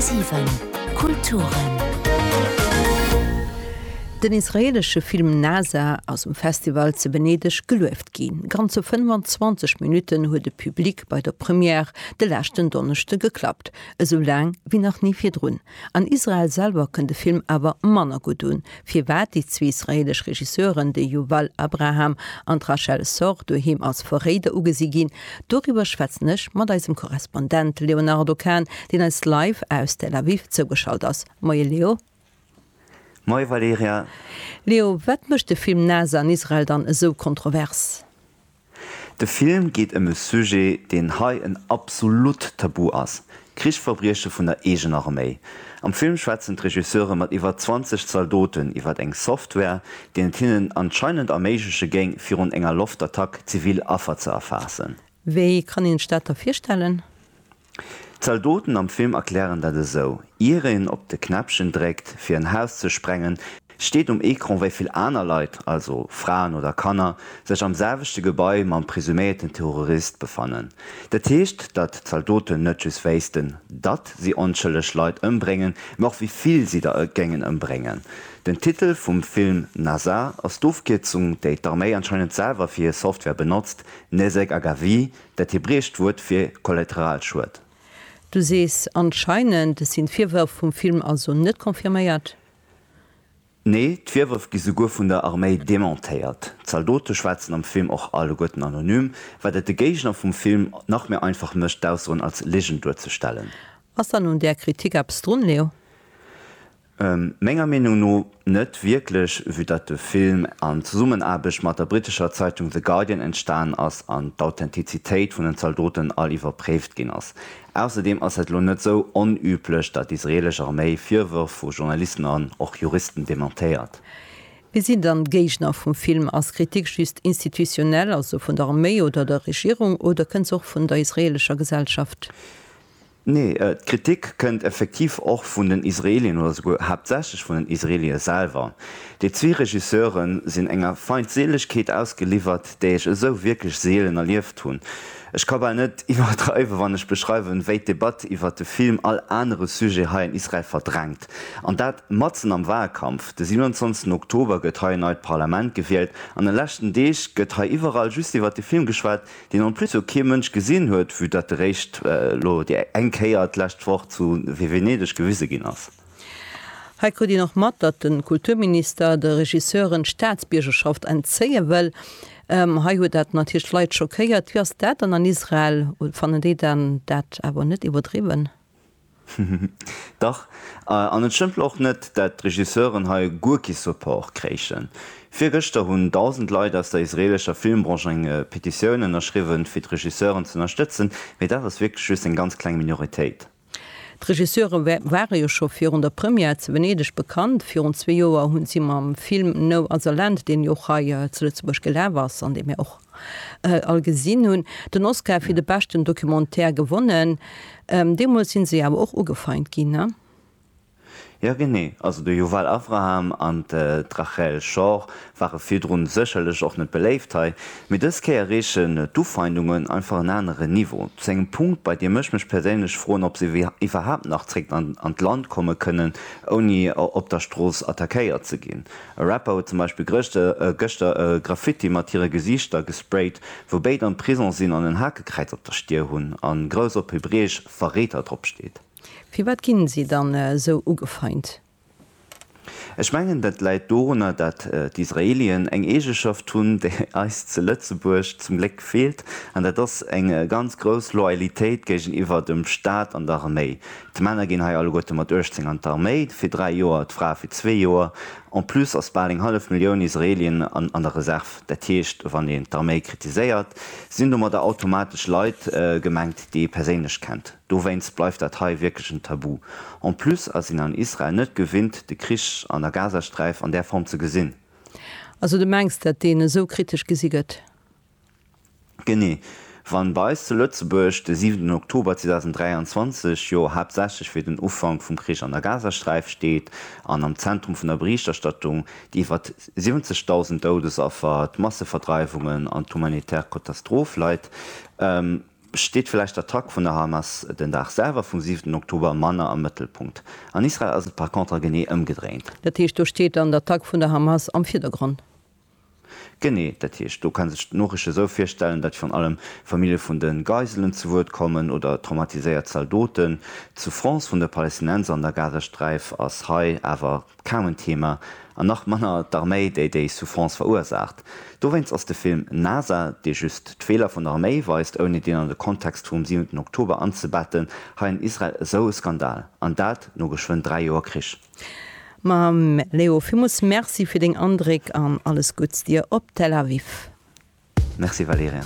10,7 Kulturen. Den israeelesche Film Nasa ass um Festival ze Venedeg gelueft ginn. Ganze 25 Minutten huet e Public bei der Première de leschten Donneschde geklappt, esou laang wéi nach ni virdrun. An Israel selwer kënnt de Film awer manner gutt un. Firwat déi zwee israeelesch Regisseuren, de Yuval Abraham an d'Rachel Sorr, doheem als Verréider ugesi ginn, doriwwer schwätzen ech mat eisem Korrespondent Léonardo Kahn, deen eis live aus Tel Aviv zougeschalt ass. Moie Leo. Moie Valerija. Leo, wat mécht de Film Nase an Israel dann esou kontrovers? De Film geet ëm e Sujet, deen hei en absolut Tabu ass, Krichsverbrieche vun der eegener Arméi. Am Film schwätzen d'Regisseure mat iwwer 20 Zaldoten iwwer eng Software, deen et hinnen anscheinend erméigleche géing, virun enger Loftattack zivil Affer ze erfaassen. Wéi kann een sech dat da virstellen? D'Zaldoten am Film erklären dat esou, Ier een op de Knäppchen dréckt, fir en Haus ze sprengen, steet um Ecran, wéi vill aner Leit, also Fraen oder Kanner, sech am selwechte Gebai mam presuméierten Terrorist befannen. Dat heescht, datt d'Zaldoten net just wéissten, datt si onschëlleg Leit ëmbréngen, mä och wéi vill si der géingen ëmbréngen. Den Titel vum Film Nasa ass d'Ofkierzung, déi d'Arméi anscheinend selwer fir hir Software benotzt, Nezek Agavi, Dat hebräescht Wuert fir Kollateralschued. Du sees anscheinend, et sinn d'Virwërf vum Film also net confirméiert? Nee, d'Virwërf gi souguer vun der Arméi dementéiert. D'Zaldote schwätzen am Film och alleguerten anonym, wat et de Géigner vum Film nach méi einfach mécht, d'Aussoen als Ligen duerzestellen. Ass dann un där Kritik eppes drun, Leo? Menger Meenung no net wierklech, vue datt de Film an Zesummenaarbecht mat der brittescher Zeitung The Guardian entstanen ass an d'Authentizitéit vun den Zaldoten all iwwerpréift ginn ass. Ausserdeem ass et elo net esou onüblech, datt d'israelesch Arméi Virwërf vu Journalisten an och Juristen dementéiert. Wie sinn dann d'Géigner vum Film? Ass Kritik just institutionell, also vun der Arméi oder der Regierung, oder kënnt se och vun der israelescher Gesellschaft? Nee, d'Kritik kënnt effektiv och vun den Israelien, oder souguer haaptsächlech vun den Israelie selwer. Déi zwee Regisseure sinn enger Feindseelegkeet ausgeliwwert, déi ech esou wierklech seelen erlieft hunn. Ech ka bal net iwwerdreiwen, wann ech beschreiwen, wéi d'Debatt iwwert de Film all anere Sujet hei an Israel verdrängt. An dat matzen am Wahlkampf. De 27 Oktober gëtt hei en neit Parlament gewielt, an den leschten Deeg gëtt hei iwwerall just iwwert de Film geschwat, deen en plus jo kee Mënsch gesinn huet, vue dat eréischt elo déi eng Kéier d'lescht Woch zu Venedeg gewise ginn ass. Hei krut een och mat, datt de Kulturminister de Regisseuren d'Staatsbiergerschaft entzéie wëll. Hei huet dat natierlech d'Leit schockéiert. Wéi ass dat dann an Israel? Fannen déi dat awer net iwwerdriwwen? Dach, an et stëmmt och net, dat d'Regisseuren hei guer kee Support kréichen. Virgëschter hunn 1.000 Leit aus der israelescher Filmbranche eng Petitioun ënnerschriwwen, fir d'Regisseure ze ënnerstëtzen, mee dat ass wierklech just eng ganz kleng Minoritéit. D'Regisseure ware jo scho virun der Première zu Venedeg bekannt. Virun zwee Joer hu si mam Film No Other Land, deen jo och hei zu Lëtzebuerg gelaf ass an dee mir och all gesinn hunn, den Oscar fir de beschten Documentaire gewonnen. Deemools si se awer och ugefeint ginn. Jo genee, also de Yuval Avraham an d'Rachel Schor ware virdrun sécherlech och net beléift hei, mee dës Kéier reechen d'Ufeindungen einfach en anere Niveau, zu engem Punkt, bei deem ech mech perséinlech froen, ob se iwwerhaapt nach zréck an d'Land komme kënnen, ouni op der Strooss attackéiert ze ginn. E Rapper huet zum Beispill gëschter e Graffiti mat hire Gesiichter gesprayt, wou béid am Prison sinn an en Hakekräiz op der Stier hunn a grouss op Hebräesch Verreeter drop steet. Firwat ginn si dann esou ugefeint? Ech mengen dat läit dorunner dat d'Israelien eng Eegeschaft hunn déi eis zu Lëtzebuerg zum Gléck feelt an dat ass eng ganz grouss Loyalitéit géigeniwwer dem Staat an der Arméi. D'Männer ginn hei alleguerte mat 18 an d'Arméi, fir dräi Joer, d'Frae fir zwee Joer. En plus ass bal eng hallef Millioun Israelien an der Reserv. Dat heescht, wann een d'Arméi kritiséiert, sinn domadder automatesch Leit gemengt, déi ee perséinlech kennt. Dowéinst bleift dat hei wierklech en Tabu. En plus ass een an Israel net gewinnt, de Krich an der Gazasträif an där Form ze gesinn. Also du mengs, dat deen esou kritesch gesi gëtt? Genee, wann bei eis zu Lëtzebuerg de siwenten Oktober 2023 jo haaptsächlech fir den Ufank vum Krich an der Gazasträif steet an am Zentrum vun der Berichterstattung déi iwwer 70.000 Doudesaffer, d'Masseverdreiwungen an d'humanitär Katastroph leit, steet vläicht d'Attack vun der Hamas den Dag selwer vum siwenten Oktober manner am Mëttelpunkt. An Israel ass et par contre genee ëmgedréint. Dat heescht, do steet dann d'Attack vun der Hamas am Virdergrond. Genee, dat heescht, do kann sech d'Noriichte sou virstellen, datt virun allem Famillje vun de Geiselen zu Wuert kommen oder traumatiséiert Zaldoten. D'Souffrance vun de Palestinenser an der Gazasträif ass hei awer kaum en Thema, an nach manner d'Arméi, déi déi Souffrance verursaacht. Dowéinst ass de Film NASA, dee just d'Feeler vun der Arméi weist, ouni deen an de Kontext vum siwenten Oktober anzebetten, hei an Israel esou e Skandal, an dat no geschwënn dräi Joer Krich. Mam Leo villmols Merci fir deng Andréck an alles Gudds dir op Tel Aviv. Merci Valerien.